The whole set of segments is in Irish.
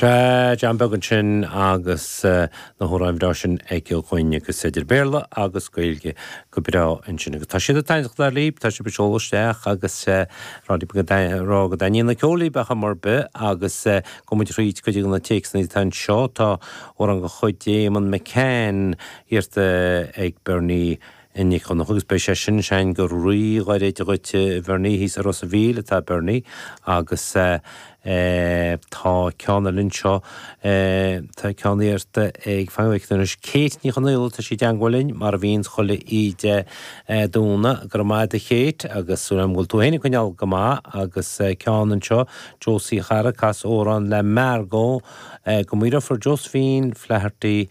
Sea, John Beag ansin agus na hamhráin bhreá sin ag John agus idir Bhéarla agus Gaeilge go breá ansin agus tá siad ag taitneachtáil libh, tá sibh ag seoladh isteach agus sibh ag rá go dtaitníonn an ceol libh ar chuma ar bith agus gabhfaidh muid thríd cuid de na téacsanna atá anseo, tá amhrán de chuid Eamonn McCann iarrta ag Bernie. a Nic Dhonncha, agus beidh sé sin ansin go rí-ghairid dhuit a Bhernie, thíos i Ros an Mhíl atá Bernie agus tá ceann eile anseo, tá ceann iarrtha ag, fan go bhfeice mé anois, Kate Ní Chonaola, tá sí i dteangmháil linn mar a bhíonns chuile oíche Domhnaigh, go raibh maith agat a Kate agus súil agam go bhfuil tú féin ag coinneáil go maith agus ceann anseo, Josie a chara, cas amhrán le Margo, do mo dheirfiúr Josephine Flaherty.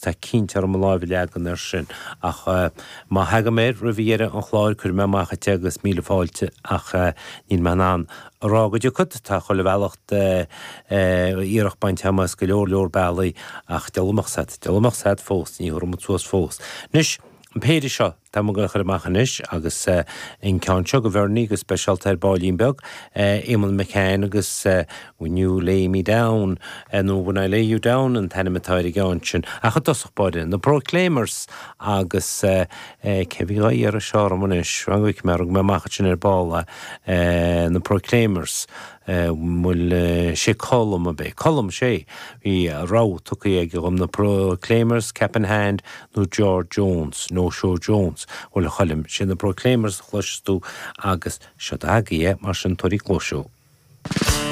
Tá cinnte orm mo láimh a leagan air sin, ach má theagann mé air roimh dheireadh an chláir, cuirfidh mé amach dhuit é agus míle fáilte, ach níl mé in ann a rá go dtiocfad, tá chuile bhealach iarracht bainte agam as go leor, leor bealaí, ach dealbh amach sat, dealbh amach sat fós, ní thabharfaidh muid suas fós. Anois, an péire seo. Tá muid ag goil a chur amach anois agus an ceann seo do Bhernie go speisialta ar baillín beag, Eamonn McCann agus When You Lay Me Down, nó When I Lay You Down an t-ainm atá ar an gceann sin. Ach i dtosach báire, na Proclaimers agus cé a bhí dhá iarraidh seo orm anois, fan go bhfeice mé ar thug mé amach ansin ar ball é, na Proclaimers. an bhfuil sé Colm ab é? Colm, sé! Bhí rogha tugtha aige dhom, na Proclaimers, Cap in Hand, nó George Jones, No Show Jones. Bhuel, a Choilm, sé na Proclaimers a chloisfeas tú agus seod agaibh é, mar sin tabhair cluais dó.